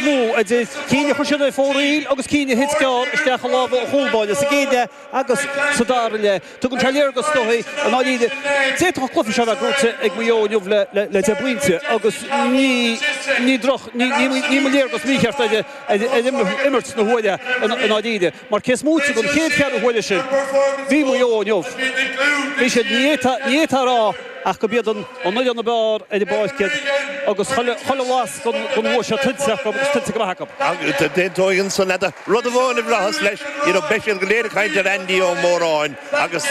nó idir cinn a chuir siad ar fóraoil agus cinn a thit gearr isteach i lámha an chúlbáire sa gcéad leath agus sa dara leath. Tugann sé léargas dúinn, i ndáiríre. D'fhéadfadh an cluiche seo a bheith gnóite ag Maigh Eo inniu le deich bpointe agus ní droch, ní mba léargas mícheart ar imirt na huaire, i ndáiríre. Mar cé is móite den chéad cheathrú uaire sin, bhí Maigh Eo inniu, bhí siad, ní fhéadfá a rá ach gurb iad an fhoireann ab fhearr ar an bpáirc iad agus chuile bhlas den bhua seo tuillte acu agus tuillte go maith acu. D'aontóinn ansan leat, rud amháin a bhraitheas leis, ní raibh, beidh siad go léir ag caint ar Andy Ó Móráin agus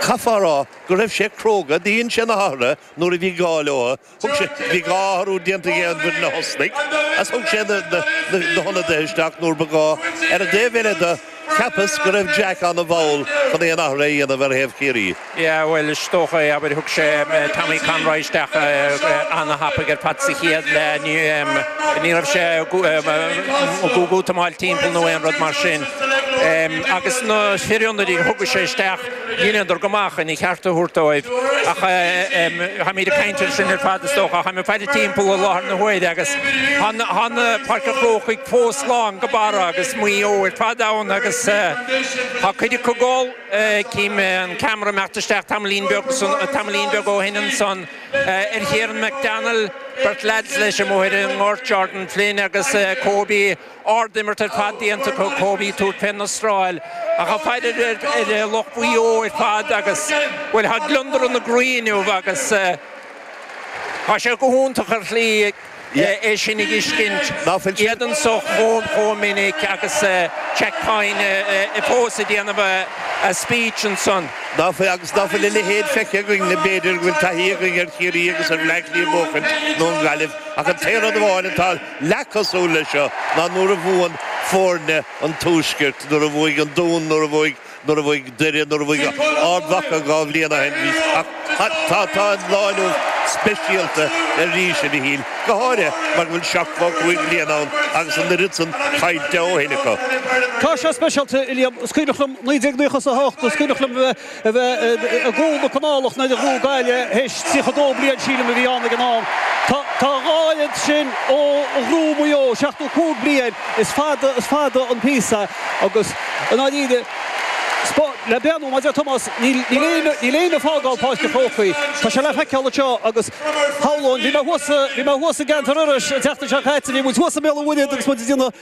chaithfeá a rá go raibh sé cróga, dhein sé na hathruithe nuair a bhí gá leo, Thug sé, bhí dhá athrú déanta aige an mhí a thosnaigh agus thug sé na hionadaithe isteach nuair ba ghá. Ar an dtaobh eile de, cheapas go raibh Jack an-mhall chun aon athruithe a dhéanamh ar thaobh Chiarraí. Yeah, bhuel, is dócha é, abair, thug sé Tommy Conroy isteach an-tapaidh ar fad sa chéad leath. Ní raibh sé ag útamáil timpeall nó aon rud mar sin. Agus na fir ionadaithe a thug sé isteach. Dheineadar go maith chun a cheart a thabhairt dóibh ach táimid ag caint air sin ar fad is dócha. Tá mé ag faire timpeall i láthair na huaire agus tá Páirc an Chrócaigh fós lán go barra agus Maigh Eo ar fad ann agus tá cuid acu ag gol. Chím an ceamara ag imeacht isteach tamaillín beag ó shin ansan ar Chiarán McDonald, beirt leaids leis amuigh ar an ngort, Jordan Flynn agus Kobe. Ard-imirt ar fad déanta acu, Kobe ag tabhairt fén Astráil, ach tá fearg ar lucht Mhaigh Eo ar fad agus, bhuel, tá gliondar ina gcroí inniu agus tá sé go hiontach ar shlí é sin a fheiscint, iad anseo chomh minic agus Jack Coyne fós ag déanamh a speech ansan. Agus ná fuil a leithéid feicthe againn le b'fhéidir go bhfuil taithí againn ar Chiarraí agus ar Bhleá Cliath ag buachaint nó an Ghaillimh ach an t-aon rud amháin atá Leath cosúil leis seo ná nuair a bhuann foirne an tuaiscirt, nuair a bhuaigh an Dún, nuair a bhuaigh, nuair a bhuaigh Doire, nuair a bhuaigh Ard Mhacha dhá bhliain ó shin arís ach tá, tá, tá an lá inniu speisialta arís a Mhichíl, go háirithe mar go bhfuil seachtó cúig bliain ann agus an oiread san caillte ó shin acu. Tá sé speisialta, Uilliam. Is cuimhneach liom naoi déag naocha is a hocht, is cuimhneach liom a bheith. a bheith i gcúl na canálach nuair a ghnóthaigh Gaillimh théis 32 bliain sílim a bhí ann ag an am. Tá a dhá oiread sin ó ghnóthaigh Maigh Eo, 75 bliain, is fada, is fada an píosa agus i ndáiríre, le breathnú, mar a deir Tomás, níl éinne ag fágáil Páirc an Chrócaigh, tá sé le feiceáil anseo agus shamhlóinn, bhí mé thuas, bhí mé thuas i gceantar Iorrais an tseachtain seo caite, bhí muid thuas i mBéal an Mhuirthead agus muid ag déanamh.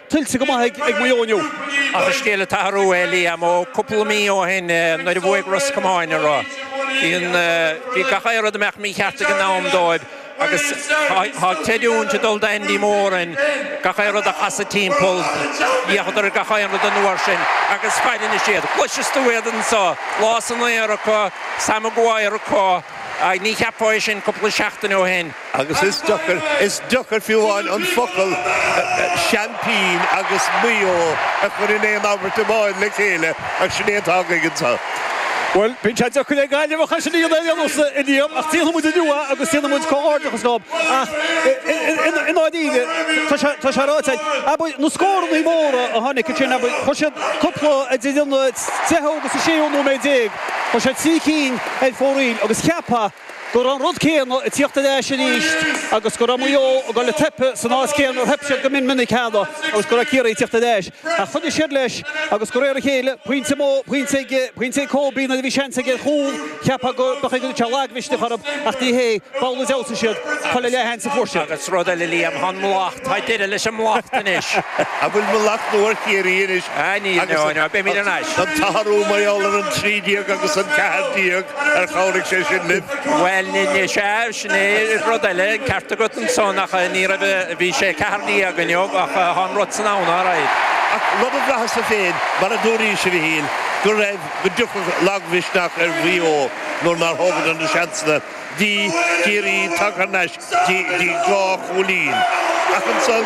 Tuillte go maith ag Maigh Eo inniu. Ach is scéal atá athrú é Liam ó cúpla mí ó shin nuair a bhuaigh Ros Comáin orthu bhí gach aon rud ag imeacht mícheart ag an am dóibh agus tá creidiúint ag dul do Andy Moran gach aon rud a chasadh timpeall d'fhéachadar gach aon rud an uair sin agus fair anois iad. Cloiseann tú iad anseo, lámha san aer acu, Sam Maguire acu, ní cheapfá é sin cúpla seachtain ó shin. Agus is deacair, is deacair fiú amháin an focal 'seaimpín' agus 'Maigh Eo' a chur in aon abairt amháin le chéile ach sin é atá againn anseo. Bhuel, bíonn sé deacair le Gaillimheach ansin iad a ainmniú sa Liam ach déanfaidh muid iarracht agus déanfaidh muid comhghairdeachas leo. Ach i ndáiríre, tá sé ráite agat, abair, na scórannaí móra a tháinig ansin, abair, chuir siad cúpla idir an deichiú agus an séú nóiméad déag, chuir siad trí cinn ar fóraoil agus cheapfá, go raibh an rud céanna ag tíocht ar ais arís agus go raibh Maigh Eo ag dul ag teipeadh san áit céanna ar theip siad go mion minic cheana agus go raibh Ciarraí ag tíocht ar ais. Ach choinnigh siad leis agus de réir a chéile, pointe amú, pointe aige, pointe ag Córbí nuair a bhí seans aige ar chúl, cheapfá go mbeadh ag tíocht lagmhisneach orthu ach ní hé, b'amhlaidh a d'fheabhsaigh siad, chuile leathsheans a fuair siad. Agus rud eile Liam, tá an mhallacht, tá deireadh leis an mallacht anois. An bhfuil mallacht nua ar Chiarraí anois agus an tarna babhla, an 13 agus an 14? Ar chabhraigh sé sin linn? Bhuel, ní, sea, sin é an rud eile, an ceart agat ansan ach ní raibh, bhí sé ceathair déag inniu ach tá an rud san ann alright. Ach rud a bhraitheas-sa féin, mar a dúraís, a Mhichíl, go raibh, go dtiocfadh lagmhisneach ar Mhaigh Eo nuair nár thógadar na seansanna. Bhí Ciarraí tagtha thar n-ais dtí dhá chúilín ach ansan,